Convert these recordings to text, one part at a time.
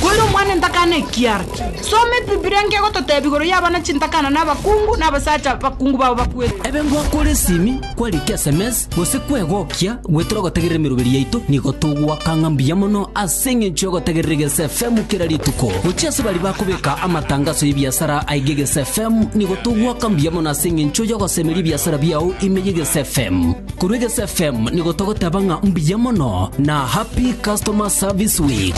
Koira omwana entakana ekiara. Soma Ebibilia nkegototeebia igoro y'abana chintakana na abakungu na abasacha bakungu bao bakwete. Ebe ngwakore esimi, kwarikia sms, Gose kwegokia gwetere ogotegerera emeroberi yaito, nigo togoaka ng'a mbuya mono ase engencho y'ogotegerera egese FM kera rituko. Gochia ase baria bakobeka amatangaso y'ebiasara aige egese FM, nigo togoaka mbuya mono ase engencho y'ogosemeria ebiasara biao ime y'egese FM. Korwa egese FM nigo togoteba ng'a mbuya mono na Happy Customer Service Week.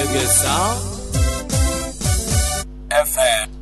Egesa FM.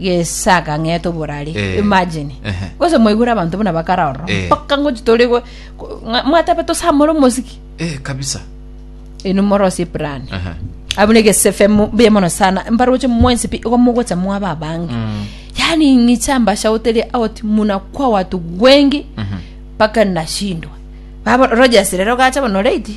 gesaga ng'ete oborari Eh. imagine Ehe. gose mwaigure abanto buna bakara ororo Eh. mpaka ngochi tore go- go- ng'a- mwatabe tosamore omosiki eh kabisa enu morosie plan Aha. abuna egesefe mu- mbuya mono sana mbaroche mwensi pi igo mogocha mwaba abange Mm. yani ng'icha mbashauteri out muna kwa watu wengi Mhm. mpaka nashindwa babo rogers rero gacha bono late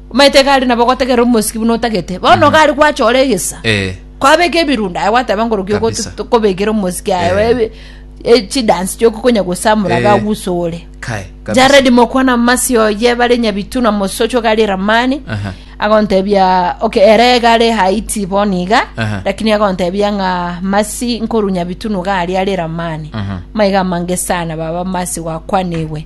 Omanyete iga are nabo ogotegerera omosiki buna otagete. Bono iga are gwachora egesa. Eh. Kwabeka ebirundu aye gwateba nkorokia ogo Kabisa. tokobekera omosiki aye Eh. ebe- e- chidansi chioko konya gosamura Eh. gagusore. Kai, kabisa. Jared mokwana masi oye bare nyabitu na mosocho iga are Ramani. Aha. Agontebia okay ere iga are Haiti bono iga Aha. lakini agontebia ng'a masi nkoru nyabitu nuga ari are Ramani. Aha. Maiga mange sana baba masi gwakwanigwe.